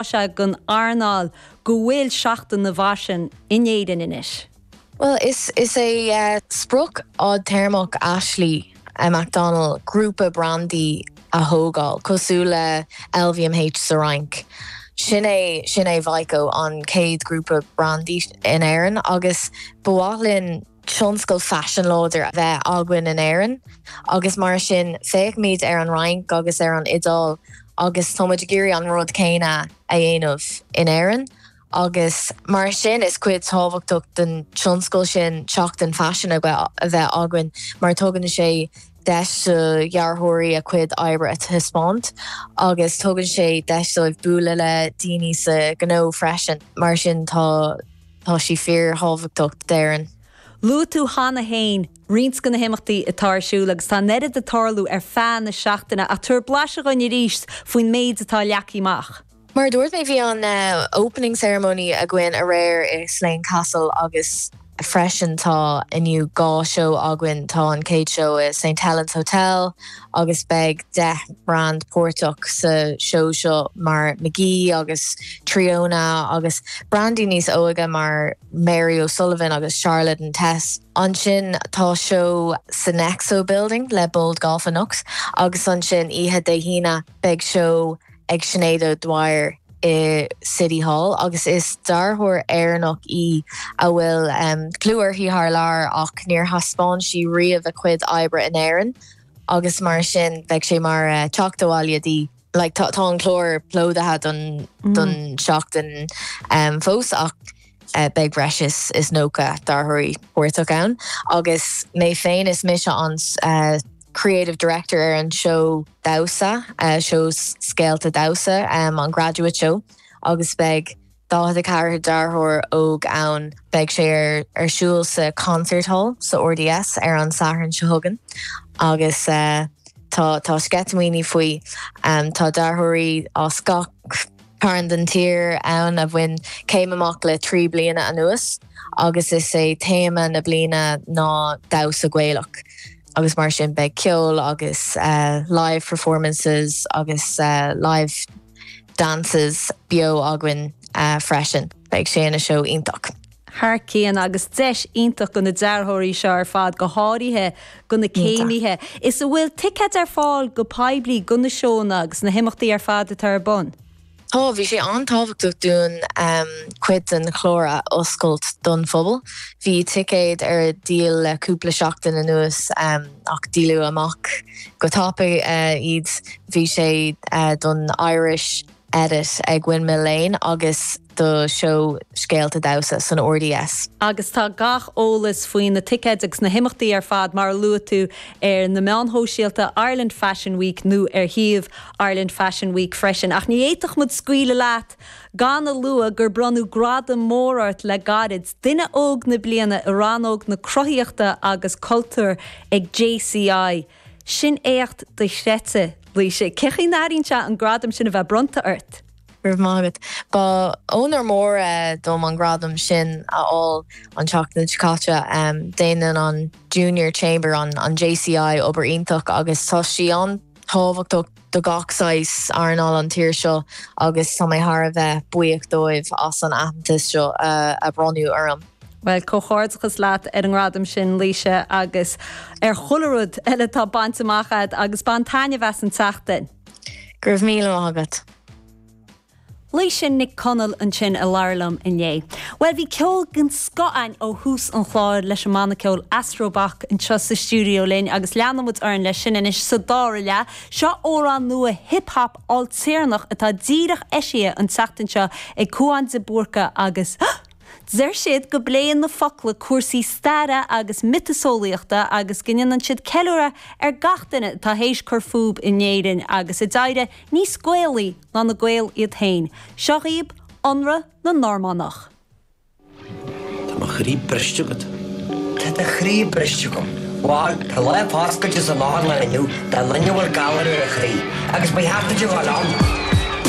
Tá sé don earnáil go bhfuil Seachtain na bhFaisean in Éirinn anois. Bhuel, is é sprioc fhadtéarmach Ashley McDonnell grúpa brandaí a thógáil, cosúil le LVMH sa Fhrainc. Sin é Vico, an chéad ghrúpa brandaí in Éirinn agus ba mhaith linn tionscal faisin láidir a bheith againn in Éirinn agus mar sin féachaimid ar an Fhrainc agus ar an Iodáil agus táimid ag iarraidh an rud céanna a dhéanamh in Éirinn agus mar sin is cuid thábhachtach den tionscal sin seachtain faisin a bheith againn mar tugann sé deis do dhearthóirí a cuid oibre a thaispeáint agus tugann sé deis dóibh bualadh le daoine sa ghnó freisin mar sin tá Tá sí fíor-thábhachtach d'Éirinn. Luaigh tú cheana féin roinnt de na himeachtaí atá ar siúl agus tá an oiread ag tarlú ar feadh na seachtaine ach tabhair blaiseadh dhúinn arís faoin méid atá leagtha amach. Mar a dúirt mé bhí an Opening Ceremony againn aréir i Slane Castle agus freisin tá inniu dhá seó againn, tá an chéad seó i St Helens Hotel, agus beidh deich mbrand páirteach sa seó seo mar Magee agus Triona agus brandaí níos óige mar Mary O'Sullivan agus Charlotte and Tess. Ansin tá seó sa Nexo Building le Bold Golf and Nux agus ansin oíche Dé hAoine beidh seó ag Sinéad O'Dwyer i City Hall agus is dearthóir Éireannach í a bhfuil clú uirthi thar lear ach níor thaispeáin sí riamh a cuid oibre in Éirinn. agus mar sin beidh sé mar teacht abhaile di. Like tá an clár plódaithe don don seachtain um fós ach eh beidh breis is is nócha dearthóirí páirteach ann agus mé féin is mise an eh creative director ar an seó damhsa eh seó scéalta damhsa um an graduate show agus beidh 44 dearthóir óg ann. Beidh sé ar ar siúl sa Concert Hall sa RDS ar an Satharn seo chugainn agus tá sceitimíní faoi. Tá dearthóirí as gach cearn den tír ann a bhain céim amach le trí bliana anuas agus is é téama na bliana ná damhsa Gaelach agus mar sin beidh ceol agus live performances agus live Dances beo againn freisin. Beidh sé ina seó iontach. Thar cionn, agus deis iontach do na dearthóirí seo ar fad, go háirithe do na céimithe. Is a bhfuil ticéid ar fáil go poiblí do na seóanna agus na himeachtaí ar fad atá ar bun? Tá, bhí sé an-tábhachtach dúinn cuid den chlár a oscailt don phobal. Bhí ticéid ar díol le cúpla seachtain anuas. ach díoladh amach go tapaidh iad. Bhí sé don Irish edit ag Windmill Lane agus do seó Scéalta Damhsa san RDS. agus tá gach eolas faoi na ticéid agus na himeachtaí ar fad, mar a luaigh tú, ar na meáin shóisialta Ireland Fashion Week nó ar shuíomh Ireland Fashion Week freisin. Ach ní fhéadfadh muid scaoileadh leat Gan a lua gur bronnadh gradam mór ort le gairid, Duine Óg na Bliana i rannóg na Cruthaíochta agus Cultúir ag JCI. Sin éacht dochreidte, Laoise. Cén chaoi a n-airíonn sé an gradam sin a bheith bronnta ort? Go raibh maith agat. Ba onóir mór é dom an gradam sin a fháil an tseachtain seo caite. Déanann an Junior Chamber, an JCI, obair iontach agus tá sí an. thábhachtach do gach saghas earnáil sa tír seo agus tá mé thar a bheith buíoch dóibh as an aitheantas seo a bhronnadh orm. Bhuel, comhghairdeachas leat ar an ngradam sin, Laoise, agus ar chuile rud eile atá bainte amach agat agus bain taitneamh as an tseachtain! Go raibh míle maith agat! Laoise Nic Conaill ansin ag labhairt liom inné. Bhuel, bhí ceol den scoth ann ó thús an chláir leis an mbanna ceoil Astrobach anseo sa stiúideo linn agus leanann muid orainn leis sin anois sa dara leath. Seo amhrán nua hip hop ailtéarnach atá díreach eisithe an tseachtain seo ag Cúán de Búrca agus deir siad go bpléann na focla cúrsaí staire agus miotaseolaíochta agus go ndéanann siad ceiliúradh ar gach duine atá théis cur fúbu in Éirinn agus a d'éirigh níos Gaelaí ná na Gaeil iad féin. Seo dhaoib Ionradh na Normannach. Tá mo chroí briste agat. Tá do chroí briste agam. Bhal, tá Lá Páirceáilte san áth anall inniu do dhuine a bhfuil galar ar a chroí, agus beidh thart fhaid a dhul ann.